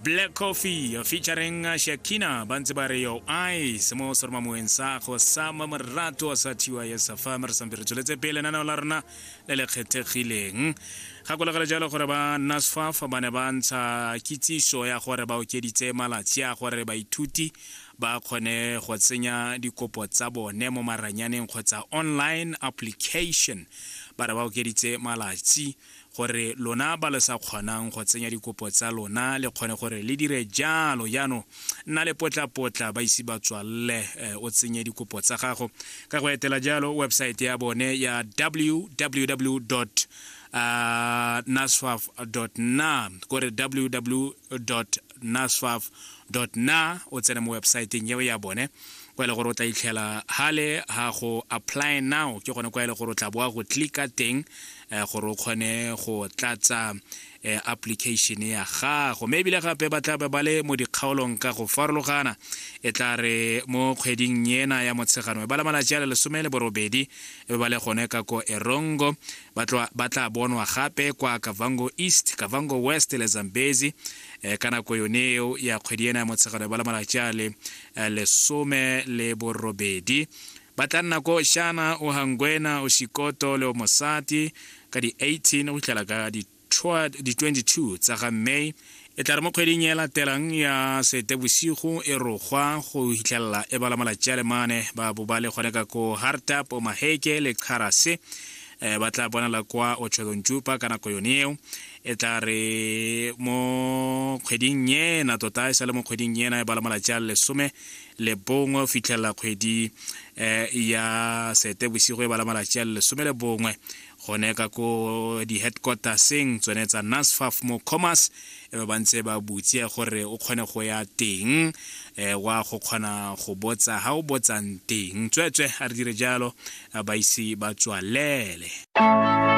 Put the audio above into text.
black coffee featuring shakina ba ntse ba re yo ice mo sormamoeng sa go sama morato sa thiwa ya safa re sampe re tsweletse pele naneo la rona le le kgethegileng gakologele jalo gore ba nasfaf ba ne ba ntsha kitsiso ya gore ba okeditse malatsi a gore baithuti ba kgone go tsenya dikopo tsa bone mo maranyaneng kgotsa online application ba re ba okeditse malatsi gore lona ba le sa kgonang go tsenya dikopo tsa lona le kgone gore le dire jalo jaanong nna le potlapotla ba ise ba tswalele eh, o tsenye dikopo tsa gago ka go etela jalo websaete ya bone ya www uh, naswaf na kore www naswaf na o tsene mo websaeteng eo ya bone kwa e le gore o tla itlhela hale ha go apply now ke gone kwa e le gore o tla boa go clicka teng eh, gore o kgone go tlatsa eh, application ya gago mme ebile gape ba tlabe ba le mo dikgaolong ka go farologana e tla re mo kgweding ena ya motshegano e ba la malatsi a le lesome le borobedi e be ba le gone ka ko erongo ba tlo- ba tla bonwa gape kwa kavango east kavango west le zambezi eh, ka nako yone eo ya kgwedi ena ya motshegare ba le malatsi a le eh, lesome le borobedi ba tla nna ko shana o hangwena o shikoto le o mosati ka di-18 go fitlhela ka di Toward di 22 tsa ga May e tla re mo kgweding e latelang ya Seetebosigo e rogwa go hitlhelela e bala malatsi a le mane ba bo ba le gone ka ko Hartap, Maheke le Xarase eh, ba tla bonala kwa Otshodonjupa ka nako yone eo e tla re mo kgweding ena tota e sa le mo kgweding ena e bala malatsi a lesome le bongwe o fitlhelela kgwedi eh, ya seetebosigo e bala malatsi a lesome le bongwe gone ka ko di-headquarterseng tsone tsa nasfaf mo commerce e ba bantse ba butse gore o kgone go ya teng um wa go kgona go botsa ga o botsang teng tsweetswe a re dire jalo ba ise ba tswalele